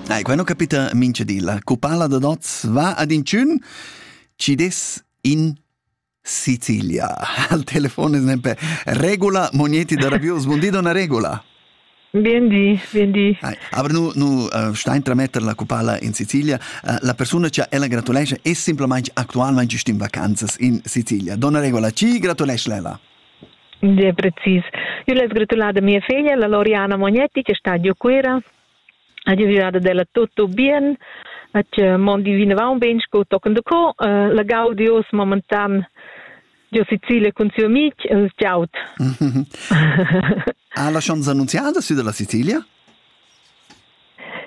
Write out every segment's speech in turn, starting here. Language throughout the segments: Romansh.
Nei, quai non capita mincha di. La cupala da Doz va ad inchün, ci des in Sicilia. Al telefon es nempe Regula Mogneti da Rabius. Buon di, donna Regula. Bien di, bien di. Hai, aber nu, nu uh, stein trametter la cupala in Sicilia. Uh, la persona che ella gratulesce è semplicemente attualmente in vacanzas in Sicilia. Donna Regula, ci gratulesce ella. Gie precis. Io less gratulare a mia figlia, la Loriana Mognetti, che sta giù Cuira. Ha giovada della tutto bien, hat mon divinavamo bene sco tochen de co. Uh, la gaudios momentan giò Sicilia cun siu amic, els ciao. ha la chance annunziada sü dalla Sicilia?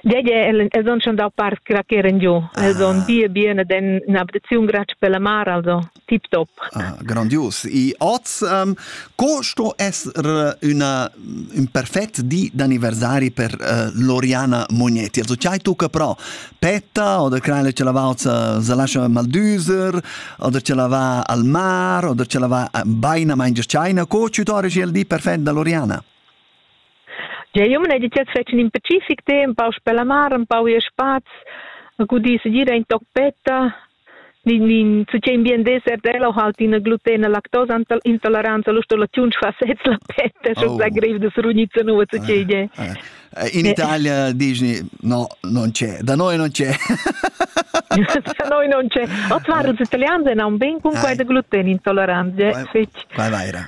Gege els han schon dau part che ch'eran giu. Els han bia bien ed han in'ablaziun grazia per la mar, also tip top. Ah, grandios. E oz, um, co sto essere una, un perfett di d'anniversari per uh, Loriana Mognetti? Also c'hai tu che però petta oder creile ce la va se lascia maldüser oder ce la va al mar oder ce la va baina mangia china. Co ci torri il di perfett da Loriana? Jeu jumma n'hai detg fetg in specific tema, empau sper la mar, empau ir spaz, a gudir segir ein toc petta, ni ni su ch'ei in bien dessert ella ho halt ina glutena lactosa intoleranza, l'ustellaziun fa sez la petta, schon sa grev da srugniza nua su ch'ei gie. In Italia dici no, non c'è, da noi non c'è. Da noi non c'è. Oz waren els italians e non ben cun quei da gluten intolerant, gie fetg. Vai vaira.